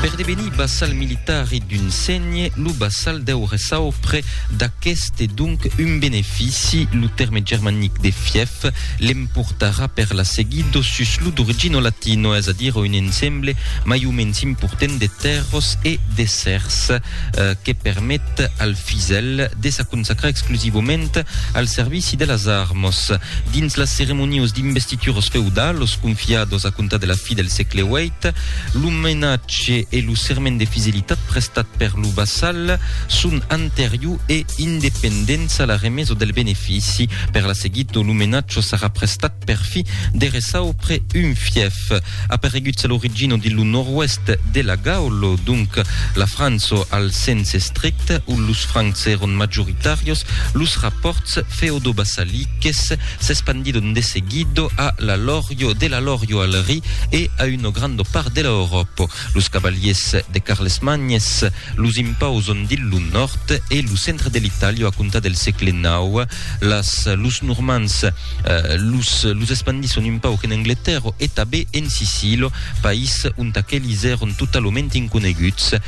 Per devenir bassal militar e d'un sègne, lo bassal deu ressar auprès d'aqueste e donc un benefici, lo tèrme germanic de fièf, l'emportarà per la seguida sus lo d'origina latina, es a dire un ensemble mai o mens important de tèrras e d'èssers que permet al fisèl de s'aconsacrar exclusivament al servici de las armas. Dins las ceremonias d'investitura, Pictures feudal, los confiados a comptar de la fi del sègle viii, l'omenatge e lo serment de fidelitat prestat per lo vassal, son anterior e independents a la remesa del benefici. Per la seguita, l'omenatge sarà prestat per fi dereçau après un fièf. Apareguts a l'origina dins lo nòrd-oèst de la Gaula, donc la França al sens estricte, ont los Francs èron majoritàrios, los rapòrts feodovassaliques, S'espandido nde seguido a l'alòrio de l'alòrio al ri e a uno grando part de l'Euròpo. Los cavaliers de Carles Magnes los impauson dil lo nòrd e lo centre de l'Itàlia a comptar del sègle nau. Las los Normands los los espandisson un pauc en Angletèrro e tabé en Sicilo, país ont aquelis èron totalament inconeguts.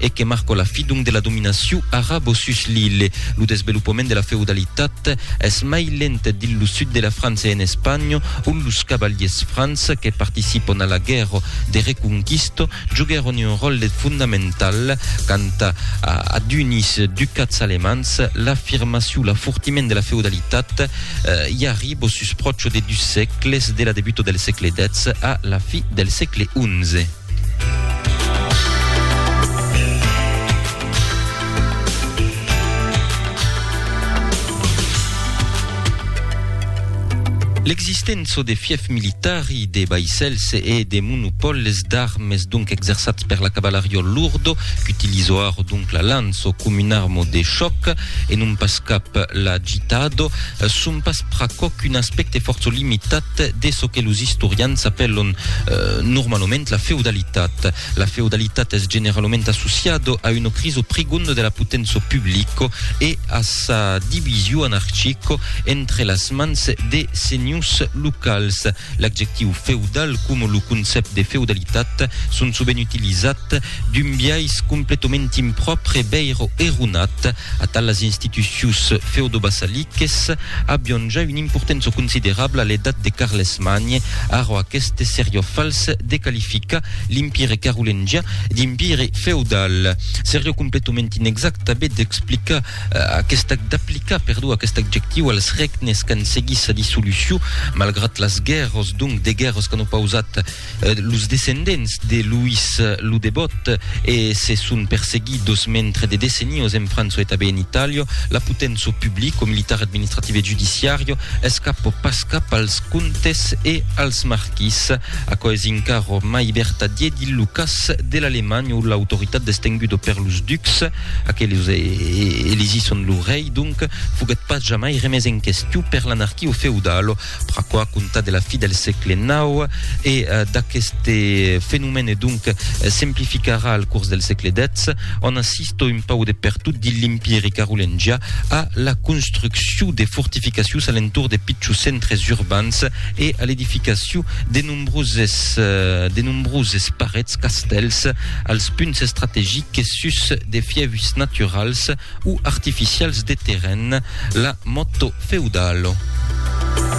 e que marcò la fi donc de la dominacion arabo sus l'ille. Lo desvelopament de la feudalitat es mai lent dins lo sud de la França e en Espanha, ont los cavaliers francs que participon a la guèrra de reconquista joguèron un ròtle fondamental. Quant a d'unis ducats alemands, l'afirmacion, l'afortiment de la feudalitat i arribò sus pròcho de dus sègles, de la debuta del sègle xix a la fi del sègle xi. L'existença de fief militari, de vaissèls e de monopòles d'armes donc exerçats per la cavalarió lourdo qu'utilizo ara donc la lança com un arma de chòc e non pas cap l'agitado son pas pr'aquò qu'un aspècte fòrça limitat de çò que los istorians apèlon normalament la feudalitat. La feudalitat es generalament associado a uno criso prigondo de la potenço publico e a sa divisio anarchico entre las mans de senhors locals. L'adjectiu feudal coma lo concèpt de feudalitat son sovent utilizat d'un biais completament impròpre, veire Eronat, Atal las institucions feudobasaliques avion ja una importença considerabla a l'edat de Carlesmagne, arrò aqueste serió fals de qualificar l'Empire carolengian d'empire feudal. Serió completament inexact tanben d'explicar aquesta d'aplicar, perdó, aquest adjectiu als regnes qu'an seguit sa dissolucion, malgrat las guèrras, donc de guèrras qu'an opausat Los descendents de Louis lo Debòt e se son perseguidos mentre de decennios en França e tanben en Itàlia, la poténço publico, militar, administrativa e judiciària escapò pas cap als comtes e als marquis. Aquò es encara mai vertadier dins lo cas de l'Alemanha ont l'autoritat destenguda per los ducs, aqueles e elisisson lo rei donc, foguèt pas jamai remés en question per l'anarquia feudala. Pr'aquò a comptar de la fi del sègle nau e d'aqueste fenomèn e donc s'emplificarà al curs del sègle dètz, ont assistó un pauc de pertot dins l'Empiri carolengià a la construccion de fortificacions a l'entorn de pichons centres urbans e a l'edificacion de nombroses de nombroses parets, castèls, als punts estrategiques sus de fièvs naturals o artificials de terren, la motto feudalo.